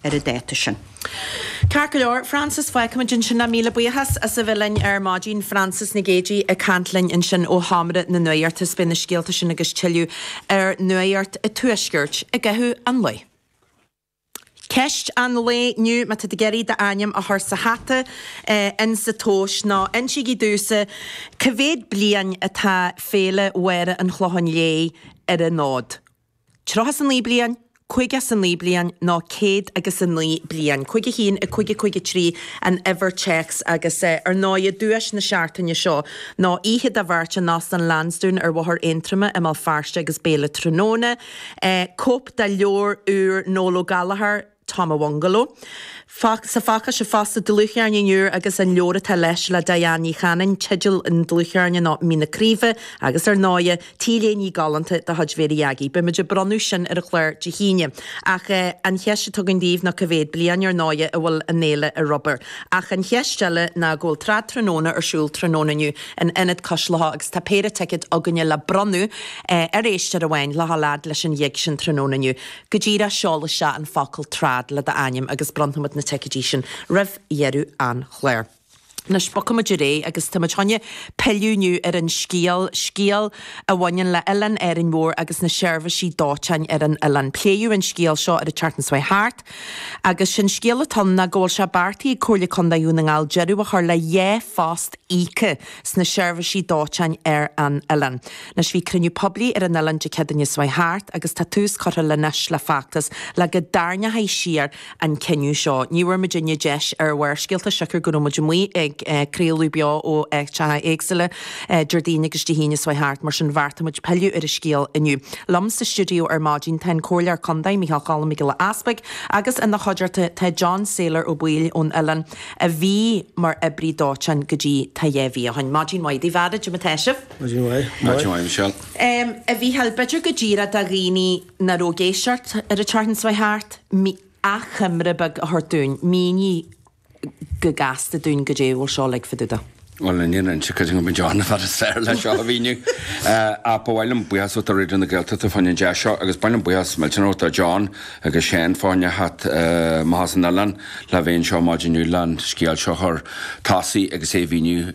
ar an dáta sin. Ceart go leor, Frances, fágfaimid ansin é, míle buíochas as a bheith linn ar maidin, Frances Nic Géadaigh ag caint linn ansin ó Sheomra na Nuaíochta, is beidh na scéalta sin agus tuilleadh ar Nuaíocht an Tuaiscirt i gcaitheamh an lae. Ceist an lae inniu, má tá tú ag iarraidh d'ainm a chur sa hata ins a' tomhais, nó insígí domhsa cé mhéad bliain atá Féile Mháire an Chlocháin Léith ar an fhód, Tríocha is a naoi bliain, Caoga is a naoi bliain nó Céad agus a naoi bliain. Cúig a haon, a cúig, a cúig a trí an uimhir téacs agus, ar ndóigh, duais na Seachtaine seo ná oíche do bheirt in Óstán Lansdowne ar Bhóthar Aontroma i mBéal Feirste agus béile tráthnóna, cóip de leabhar úr Noel Ó Gallchóir, Tom Awongolo, sa pháca seo fosta, dlúthcheirnín úr agus an leabhar atá leis le Diane Ní Chanainn, teideal an dlúthcheirnín ná Mín na Craoibhe agus ar ndóighe, T-léine galánta de chuid Mhéirí Aggie. Beidh muid ag bronnadh sin ar an chlár Dé hAoine. Ach an cheist atá agam daoibh ná cé mhéad bliain, ar ndóighe, a bhfuil an fhéile ar obair? Ach an cheist eile ná go bhfuil Trad Tráthnóna ar siúl tráthnóna inniu in Ionad Cois Locha agus tá péire ticead againne le bronnadh ar éisteoir amháin le dhul fhad leis an ghig sin tráthnóna inniu. Go díreach, seol isteach an focal trad le d'ainm agus bronnfaimid na ticeidí sin roimh dheireadh an chláir. Anois, bogfaimid ar aghaidh agus táimid chun pilleadh inniu ar an scéal, scéal a bhaineann le Oileán Árainn Mhór agus na seirbhisí dóiteáin ar an oileán. Pléadh an scéal seo ar an tseachtain seo a chuaigh thart agus sé'n scéal atá ann ná go bhfuil sé beartaithe ag Comhairle Contae Dhún na nGall deireadh a chur le dhá phost íoctha sna seirbhisí dóiteáin ar an oileán. Anois bhí cruinniú poiblí ar an oileán Dé Céadaoin seo a chuaigh thart agus tá tús curtha le anois le feachtas le go dtarraingeofaí siar an cinneadh seo. Ní bhfuair muidinne deis ar Bharrscéalta siocair go raibh muid amuigh ag craoladh beo ó áiteacha éagsúla Déardaoin agus Dé hAoine seo a chuaigh thart mar sin bheartaigh muid pilleadh ar an scéal inniu. Liom sa stiúideo ar maidin tá an Comhairleoir Condae Micheál Cholm Mac Giolla Easbuig agus ina chuideachta tá John Sailor Ó Baoill ón oileán a bhí mar oibrí dóiteáin go dtí tá dhá mhí ó shin. Maidin mhaith daoibh a fheara, goidé mar atá sibh? Maidin mhaith, Michelle. A Mhícheáil, b'fhéidir go díreach do dhaoine nach raibh ag éisteacht ar an tseachtain seo a chuaigh thart, achoimre beag a thabhairt dúinn, mínigh go gasta dúinn goidé a bhfuil seo uilig fá dtaobh dó. Bhuel, níl aon inse cad a bhí ann, fad is fearr leis seo a mhíniú. Ach ba mhaith liom buíochas a thabhairt do Raidió na Gaeltachta faoin an deis seo, agus ba mhaith liom buíochas millteanach a thabhairt do John agus Seán faoin a theacht amach as an oileán le bheith anseo maidin inniu le'n scéal seo a chur chun tosaigh agus é a mhíniú.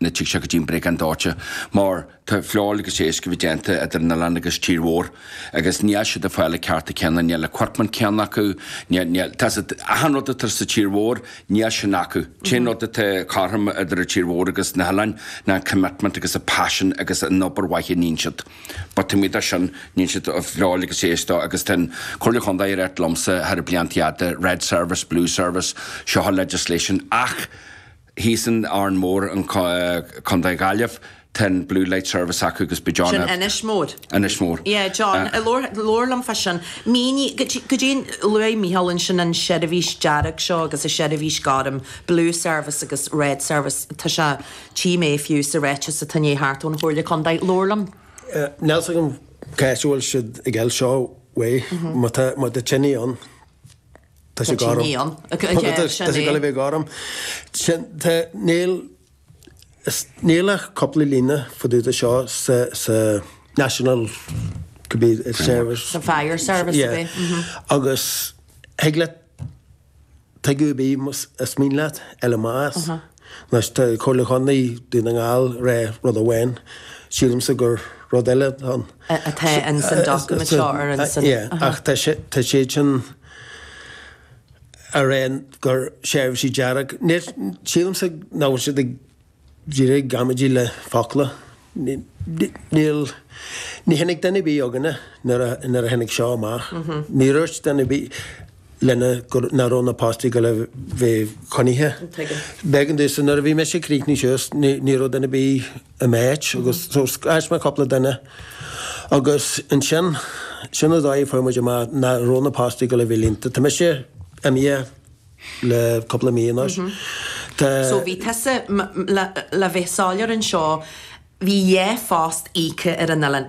Ní thig sé go dtí an briogáid dóiteáin mar tá feoil agus iasc á bheith déanta idir an oileán agus tír mhór agus níl siad ag fáil na cearta céanna, níl an equipment céanna acu, níl, níl, tá siad, achan rud atá sa tír mhór níl sin acu. An t-aon rud atá cothrom idir an tír mhór agus na hoileáin ná an commitment agus an passion agus an obair mhaith a níonn siad. But taobh amuigh de sin níonn siad feoil agus iasc dó agus tá an Comhairle Chontae ag ráit liomsa thar na blianta fhada, red service, blue service, seo legislation ach, Thíos in Árainn Mór, Contae na Gaillimhe, tá an Blue Light Service acu agus beidh John Sin Inis Mór. Inis Mór. Yeah, John. Eh, labhair, labhair liom fá sin. Mínigh, cad é, cad é, luaigh Micheál ansin an seirbhís dearg seo agus an seirbhís gorm, Blue Service agus Red Service. Tá sé, tchí mé fiú sa ráiteas atá ag gabháil thart ón Chomhairle Contae. Labhair liom. Eh, níl 's agam cá as a bhfuil siad ag fháil seo uaidh, má tá, má tá tine ann, Tá sé gorm. Tá sé ag gabháil a bheith gorm. Níl ach cúpla líne fá dtaobh de seo sa National Service. Sa Fire Service a bhí. Agus thig leat, tuigim a bhí, is mian leat LMAs. Laistigh de Chomhairle Chontae Dhún na nGall re rud amháin, sílimse gur rud eile ann. atá in san document seo ar an san. Ie, ach tá sé, tá siad sin a rá gur seirbhísí dearg, níl, sílimse nach bhfuil siad ach díreach ag amaidí le focla. Níl. Ní tháinig duine ar bith againne nuair a tháinig seo amach. Ní dúirt duine ar bith linne nach raibh na postaí ag gabháil a bheith coinnithe. Bhuel domhsa. Nuair a bhí mise ag críochnú suas ní raibh duine ar bith i m'áit agus so scairt mé cúpla duine agus ansin sin an dóigh a bhfuair muid amach nach raibh na postaí ag gabháil a bheith líonta. Tá mise imithe le cúpla mí anois. Tá. So bhí tusa, le bheith soiléir anseo, bhí dhá phost íoctha ar an oileán.